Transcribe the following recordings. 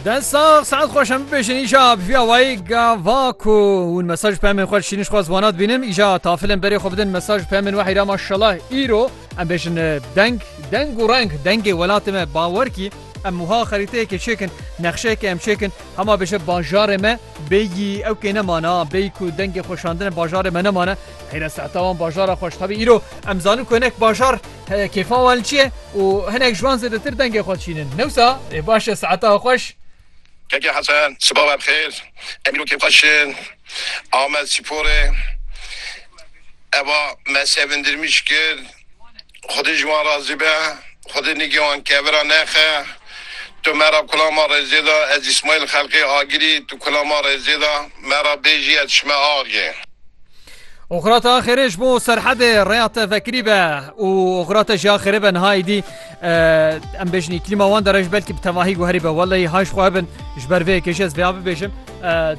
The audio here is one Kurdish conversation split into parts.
Den sağ saat xweş em bibêjin îja biviya wayî gava ku hûn mesaj pemên xwe şîniş xwaz wana dibînim îja tafilên berê xwe bidin mesaj pemên wehî ra maşallah îro em bêjin e, deng deng û reng dengê welatê me bawer kî em wiha xerîteyekê çêkin nexşeyekê em çêkin hema bêje bajarê me bêyî ew kê nemana bêyî ku dengê xweşandine bajarê me nemane Heyre sehta wan bajara xweş tevî îro em zanin ku hinek bajar he kêfan wan li çi ye û hinek ji wan zêdetir dengê xwe dişînin. Newsa ê baş e seheta xweş. Keke Hesen, siba we bi xêr. Em îro kêfxweş in. Amed spor e. Eva me sevindirmîş kir. Xwedî ji wan razî be, Xwedî nîgê wan kevira nexe. Tu me ra kula ma rêzê da, ez Îsmaîl xelqê agirî, tu kula ma rêzê da, me ra bêjî ez çime axê. Oxira te axêrê ji bo serhedê rêya te vekirî be û oxira te jî axêrê be niha êdî em bêjin îklîma wan dere ji belkî bi tevahî guherî be weleyî hay ji xwe hebin ji ber vê yekê jî ez vêya bibêjim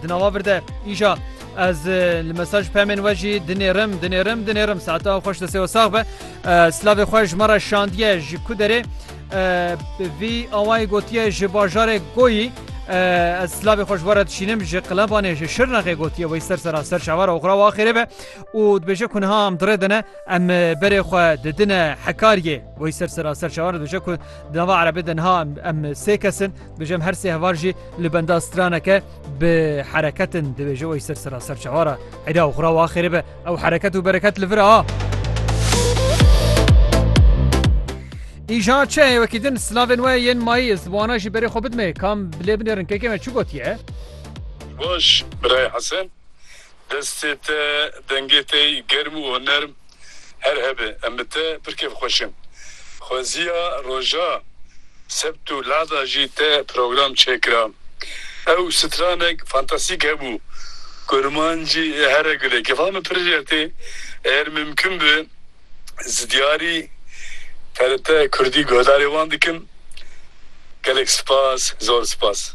di nava vir de îja Ez li mesaj pemên we jî dinêrim dinêrim dinêrim saeta xweş di sêwe sax be Silavê xwe ji me re şandiye ji ku derê vî awayê gotiye ji bajarê goyî ez silavê xweş were dişînim ji qilebanê ji şirnexê gotiye wê ser sera ser şevara oxra wa xêrê be û dibêje ku niha em dirê dine em berê xwe didine hekariyê wê ser sera ser şewar dibêje ku dava erebê de niha em sê kesin dibêjem her sê hevar jî li benda straneke Bi hereketin dibêje wey ser sera ser çewara Eda û xura wa xêrê be ew hereket û bereket li vir a. Îja çe wekî din silavên we yên mayî ez wana jî berê xwe bidimê kam bilê binêrin kekê me çi gotiye? Baş birayê Hesen. Destê te, dengê te yî germ û honerm her hebe. Em bi te pir kêfxweş in. Xweziya roja sebt û lada jî te program çêkira. Ew stranek fantasîk hebû. Kurmancî here gule. Kefa min pir jêr tê. Eger mimkun bi zidyarî TRT Kurdî guhdarê wan dikim. Gelek spas, zor spas.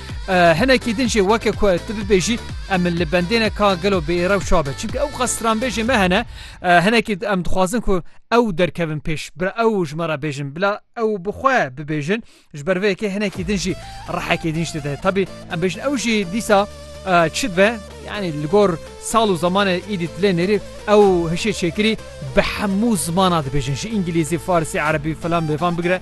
Hinekî din jî weke ku tu bibêjî em li bendêne ka gelo bi êrew çabe çimkî ew qas stranbêjê me hene hinekî em dixwazin ku ew derkevin pêş bi ew ji me re bêjin bila ew bixwe bibêjin ji ber vêkê hinekî din jî rehekê din ji dide tabî em bêjin ew jî dîsa çi be yani li gor sal û zamanê îdî dilê nêrî ew hişê çêkirî bi hemû zimana dibêjin ji îngilîzî farsî erebî filan bêvan bigire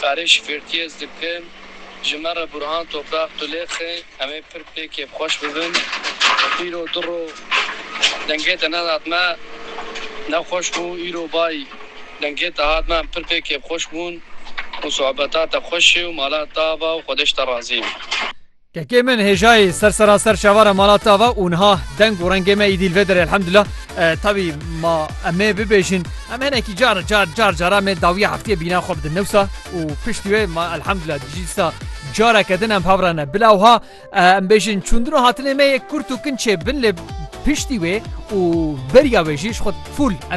Karê şifertiyê ez dikim. Ji me re Burhan Topraq tu lêqe. Em ê pir pê kêfxweş bibin. Îro du roj dengê te nedat me. Ne xweş bû. Îro bay dengê te hat me. Em pir pê kêfxweş bûn û sohbeta te xweş e û mala te ava û xwedeş te razî ye. Kekê min hêjayê ser seraser çavara mala te ava û niha deng û rengê me îdî li vê derê elhemdullah. Tevî ma em ê bibêjin em hinekî car car car car em ê dawiya heftiyê bîna xwe bidin newsa û piştî wê ma elhemdullah dijî dîsa careke din em hev re ne. Bila wiha em bêjin çûndin û hatinê me yê kurt û kinçê bin lê piştî wê û beriya wê jî ji xwe fûl em ê